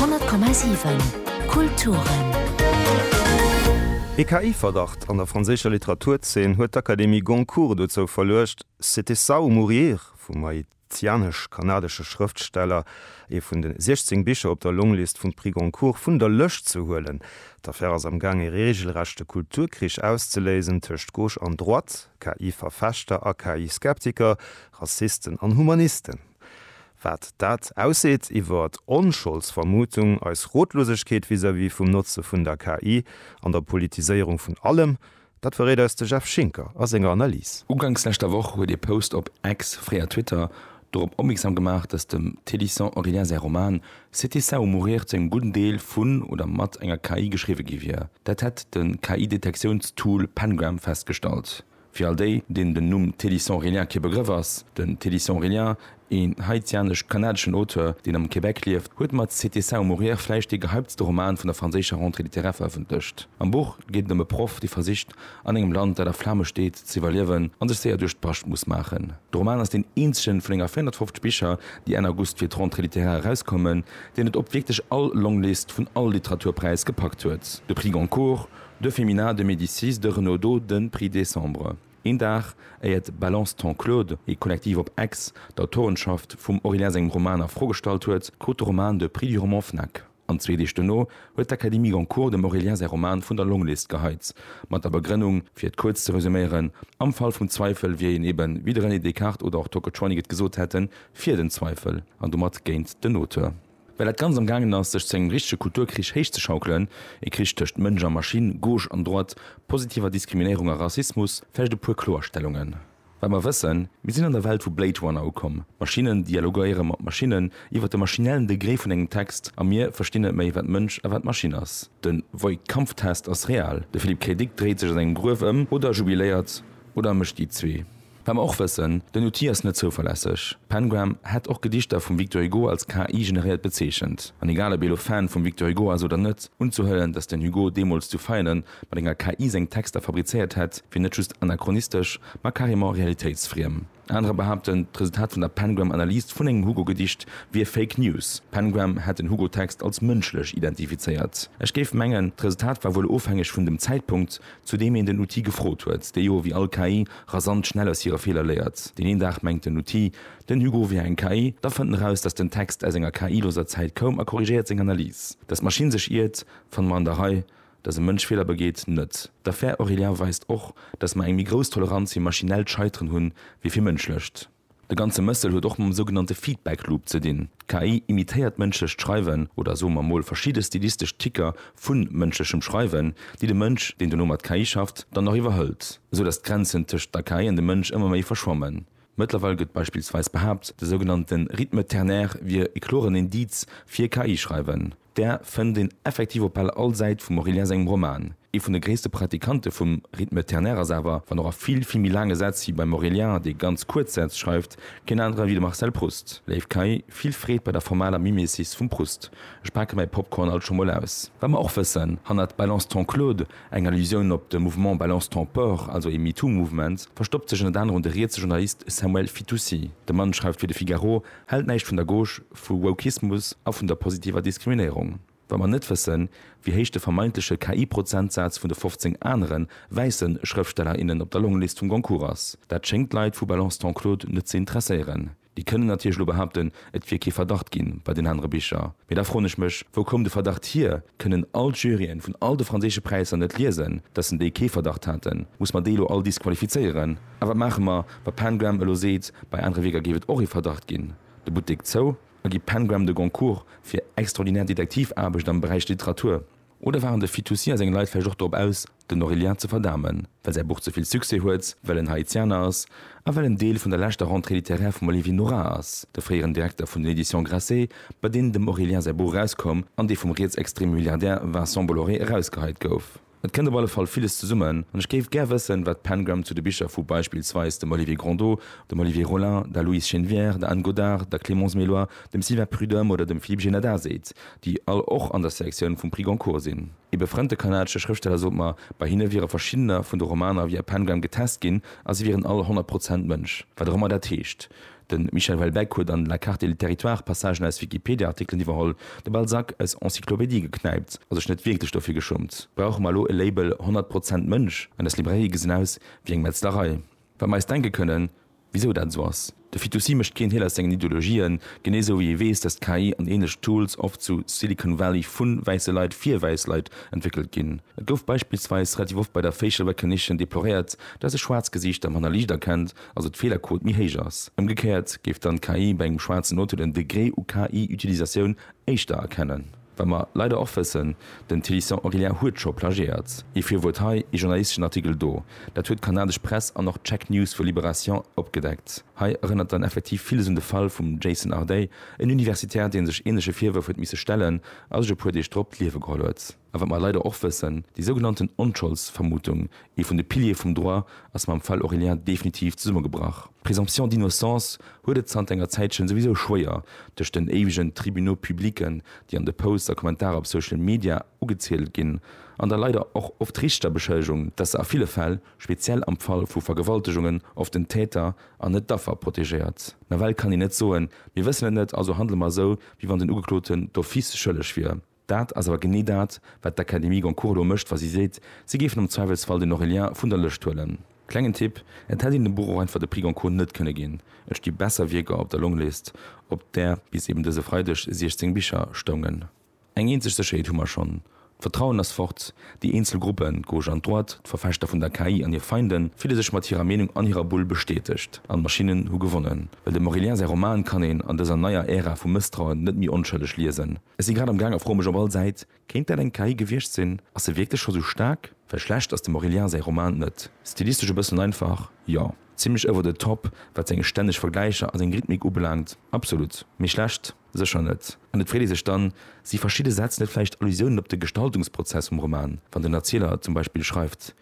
100,7 Kulturen. Ee KI-Verdacht an der franséischer Literaturzeen huet d'Akademie Goncourt dozou verluecht, C'était ça ou mourir vum haitianesch-kanadesche Schrëftsteller, ee vun de 16 Bicher op der Longlist vum Prix Goncourt, vun der Lëscht ze huelen. D'Affär ass am Gaang, ee reegelrechte Kulturkrich auszeléisen tëscht Gauche an Droite, KI-Verfechter a KI-Skeptiker, Rassisten an Humanisten. Wat dat ausseet iwwer d'Onscholdsvermutung, eis Rotlosegkeet vis-à-vis vum Notze vun der KI an der Politiséierung vun allem, dat verréit eis de Jeff Schinker a senger Analys. Uganks leschter Woch huet ee Post op Ex, fréier Twitter, dorop opmierksam gemaach, datt dem Télisant Aurélien säi Roman C'était ça ou mourir zu engem gudden Deel vun oder mat enger KI geschriwwe gi wier. Dat hätt de KI-Detektiounstool Pengram festgestallt. Fir all déi, deenen den Numm Teddy St-Aurélien kee Begrëff ass, Den Teddy St-Aurélien, een haitianesch-kanadeschen Auteur, deen am Québec lieft, huet mat C'était ça ou mourir vläicht dee gehyptste Roman vun der franséischer Rentrée littéraire verëffentlecht. Am Buch geet et ëm e Proff, dee versicht, an engem Land, dat a Flame steet, ze iwwerliewen an sech séier duerch d'Bascht muss maachen. De Roman ass deen eenzegen vun enger 450 Bicher, déi Enn August fir d'Rentrée littéraire erauskommen, deen et op wierklech all Longlist vun all Literaturpräis gepackt huet, de Prix Goncourt, De Féminin de Médicis de Renaudot, de Prix Décembre, een Dag éier d'Balance Ton Claude, ee Kollektiv op Aix, d'Autorenschaft vum Aurélien sengem Roman a Fro gestallt huet, krut de Roman de Prix du roman Fnac. An zwee Deeg dono huet d'Académie Goncourt dem Aurélien säi Roman vun der Longlist geheit, mat der Begrënnung, fir et kuerz ze resuméieren, Am Fall vum Zweifel wier een eben, wéi de René Descartes oder och d'Tocotronic et gesot hätten, fir den Zweifel an domat géint den Auteur. Well dat Ganzt am gaangen ass, sech zu engem richtege Kulturkrich héichzeschaukelen, e Krich tëscht Mënsch a Maschinn, Gauche an Droite, positiver Diskriminéierung a Rassismus, vläicht e puer Kloerstellungen. Wat mer wëssen, Mir sinn an der Welt vu Blade Runner ukomm. Maschinne dialoguéiere mat Maschinnen iwwer de maschinellen Degré vun engem Text a mir verstinn net méi, wat Mënsch a wat Maschinn ass. De Voight-Kampf-Test ass real. De Philippe K. Dick dréit sech an engem Gruef ëm, oder jubiléiert, oder e mécht déi zwee. Wat mer och wëssen, den Outil ass net zouverlässeg. Pengram hätt och Gedichter vum Victor Hugo als KI generéiert bezeechent. An egal ob ee lo Fan vum Victor Hugo ass oder net, unzehuelen, datt den Hugo deemools zu Veianen mat enger KI seng Texter fabrizéiert hätt, wier net just anachronistesch, ma carrément realitéitsfriem. Anerer behaapten, d'Resultat vun der Pengram Analyse vun engem Hugo Gedicht wier Fake News. Pengram hätt den Hugo Text als mënschlech identifizéiert. Ech géif mengen, d'Resultat war wuel ofhängeg vun dem Zäitpunkt, zu deem een den Outil gefrot huet, dee jo, wéi all KI, rasant schnell aus hire Feeler léiert. Deen een Dag mengt den Outil, den Hugo wier eng KI, da fënnt en eraus, datt den Text aus enger KI-loser Zäit koum a korrigéiert seng Analys. Datt d'Maschinn sech iert, fanne mer an der Rei, datt e Mënsch Feeler begeet, net. D'Affär Aurélien weist och, datt mer eng méi grouss Toleranz fir maschinellt Scheiteren hunn, wéi fir mënschlecht. De ganze Mëssel huet och mam sougenannte Feedback Loop ze dinn. D'KI imitéiert mënschlecht Schreiwen, oder soe mer mol verschidde stilistesch Ticker vu mënschlechem Schreiwen, déi de Mënsch, deen dono mat KI schafft, dann nach iwwerhëlt, esou datt d'Grenzen tëscht der KI an dem Mënsch ëmmer méi verschwammen. Mëttlerweil gëtt beispillsweis behaapt, de sougenannte Rythme ternaire wier e kloren Indiz fir KI-Schreiwen. Där fënnt een effektiv op bal all Säit vum Aurélien sengem Roman. Ee vun de gréisste Pratikante vum Rythme ternaire ass awer, wann och a vill, vill méi laange Sätz wéi beim Aurélien, dee ganz kuerz Sätz schreift, keen anere wéi de Marcel Proust. Léif Kay, vill Freed bei der formaler Mimesis vum Proust. Ech pake mäi Popcorn alt scho mol aus. Wat mer och wëssen, hannert Balance ton Claude, eng Allusioun op de Mouvement Balance ton port, also ee MeToo-Mouvement, verstoppt sech ënnert anerem de rietse Journalist Samuel Fitoussi. De Mann schreift fir de Figaro, Hält näischt vun der Gauche, vu Wokismus a vun der positiver Diskriminéierung. Wa mer net wëssen, wéi héich de vermeintleche KI-Prozentsaz vun de 15 anere wäisse Schrëftsteller, innen op der Longlist vum Goncourt ass, dat schéngt d'Leit vu Balance ton Claude net ze interesséieren. Déi kënnen natierlech elo behaupten, et wier kee Verdacht gi bei den anere Bicher. Mee da froen ech mech, Wou koum de Verdacht hier? Kënnen all d'Juryen vun all de franséische Präisser net liesen, datt en déi kee Verdacht haten? Muss mer déi elo all disqualifizéieren? A wat maache mer, wa PanGram elo seet, bei anere Wierker géif et och ee Verdacht ginn, de Buttek zou, a gi PanGram de Goncourt fir extraordinär Detektivaarbecht am Beräich Literatur? Oder waren de Fitoussi a seng Leit vläicht och drop aus, den Orillia ze verdamen, well säi Buch ze vill Succès huet, well en Haitianer ass a well en Deel vun der leschter Rentrée littéraire vum Olivier Nora ass, de fréieren Direkter vun den Editions Grasset, bei deenen dem Orillia säi Buch erauskoum an dee vum rietsextreme Milliardär Vincent Bolloré erausgeheit gouf? Et kënnt op alle Fall villes zesummen an ech géif gär wëssen, wat d'Pangram zu de Bicher vu beispillsweis dem Olivier Grondeau, dem Olivier Rollin, der Louise Chenevière, der Anne Godart, der Clémence Méloy, dem Sylvain Prud'homme oder dem Philippe Genada seet, déi all och an der Selektioun vum Prix Goncourt sinn. Ee befrënnte kanadesche Schrëftsteller sot mer, bei hinne wiere verschiddener vun de Romaner via Pangram getest ginn a si wieren all 100 Prozent Mënsch, wat och ëmmer dat heescht. De Michel Houellebecq huet an La carte et le territoire Passagen aus Wikipedia-Artikelen iwwerholl, de Balzac aus Encyclopédie geknäipt a sech net wierklech dofir geschummt. Brauche mer elo e Label 100 Prozent Mënsch? An eis Librairie gesinn aus wéi eng Metzlerei. Wat mer eis denke kënnen, wisou dat esou ass. De Fitoussi mécht keen Heel aus sengen Ideologien, genee esou wéi ee weess, datt KI an ähnlech Tools oft zu Silicon Valley vu wäisse Leit fir wäiss Leit entwéckelt ginn. Et gouf beispillsweis relativ oft bei der Facial Recognition deploréiert, datt e schwaarz Gesiichter manner liicht erkennt, also d'Feelerquot méi héich ass. Ëmgekéiert géif dann d'KI bei engem schwaarzen Auto den Degré u KI-Utilisatioun éischter erkennen. Wat mer leider och wëssen, den Thélisson Aurélien huet scho plagiéiert. Ee Virwuert hei, ee journalisteschen Artikel do. Dat huet d'kanadesch Press an och d'Check News vu Libération opgedeckt. Hei erënnert dann effektiv villes un de Fall vum Jason Ardei, en Universitär, dee sech ähnleche Virwërf huet misse stellen a sech e puer Deeg drop d'Liewe geholl huet. A wat mer leider och wëssen, déi sougenannten Onscholdsvermutung, ee vun de Piliere vum Droit, ass mam Fall Aurélien definitiv zesummegebrach. D'Présomption d'innocence huet et zanter enger Zäitchen souwisou schwéier, duerch den éiwegen Tribunaux publiquen, déi an de Posts a Kommentarer op Social Media ugeziedelt ginn, an der leider och oft richter Beschëllegung, dass se a ville Fäll, speziell am Fall vu Vergewaltegungen, oft den Täter an net d'Affer protegéiert. Nawell kann een net soen, mir wëssen et net, also handele mer esou, wéi wann den Ugekloten d'office schëlleg wier. Dat ass awer genee dat, wat d'Académie Goncourt elo mécht, wa si seet, si géifen am Zweiwelsfall den Aurélien vun der Lëscht huelen. Klengen Tipp, Et hätt een dem Buch och einfach de Prix Goncourt net kënne ginn, et sti besser Wierker op der Longlist, op där bis eben dëse Freideg 16 Bicher stoungen. Eng eenzeg Sécherheet hu mer schonn, D'Vertrauen ass fort. Déi eenzel Gruppen, d'Gauche an d'Droite, d'Verfechter vun der KI an hir Feinden, fille sech mat hirer Meenung an hirer Bull bestätegt, an d'Maschinnen hu gewonnen. Well dem Aurélien säi Roman kann een an dëser neier Ära vu Mësstrauen net méi onschëlleg liesen. Ech si grad am gaang a froe mech op all Säit, kéint dat eng KI gewiecht sinn? Ass se wierklech scho sou staark? Well schlecht ass dem Aurélien säi Roman net. Stilistesch e bëssen einfach, jo. Zimlech over the top, wat seng stänneg Vergläicher a seng Rhythmik ubelaangt, absolut. Mee schlecht? Sécher net. An et freet ee sech dann, si verschidde Sätz net vläicht Allusiounen op de Gestaltungsprozess vum Roman, wann den Erzieler zum Beispill schreift,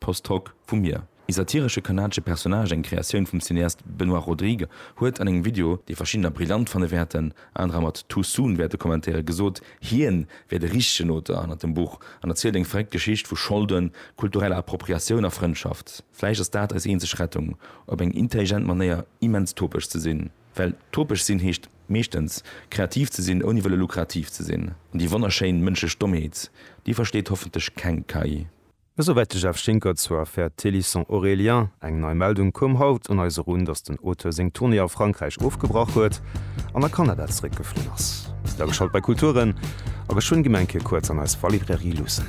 Post hoc, Vu mir, ee satiresche kanadesche Personnage, eng Kreatioun vum Cineast Benoit Rodrigue, huet an engem Video, dee verschiddener brillant fanne wäerten, anerer mat too soon wäerte kommentéieren, gesot, hien wier de richtegen Auteur hannert dem Buch an erzielt eng verréckt Geschicht vu Scholden, kultureller Appropriatioun a Frëndschaft. Vläicht ass dat eis eenzeg Rettung, op eng intelligent Manéier immens topesch ze sinn. Well topesch sinn heescht meeschtens, kreativ ze sinn ouni wëlle lukrativ ze sinn. An déi wonnerschéin mënschlech Dommheet, déi versteet hoffentlech keng KI. Esouwäit de Jeff Schinker zur Affär Thélisson Aurélien. Eng nei Meldung koum haut un eis erun, datt den Auteur seng Tournée a Frankräich ofgebrach huet an a Kanada zeréckgeflunn ass. Bis elo geschalt bei Kulturen a geschwënn d'Gemeng Kierkuerts an eis Wallibrairie luussen.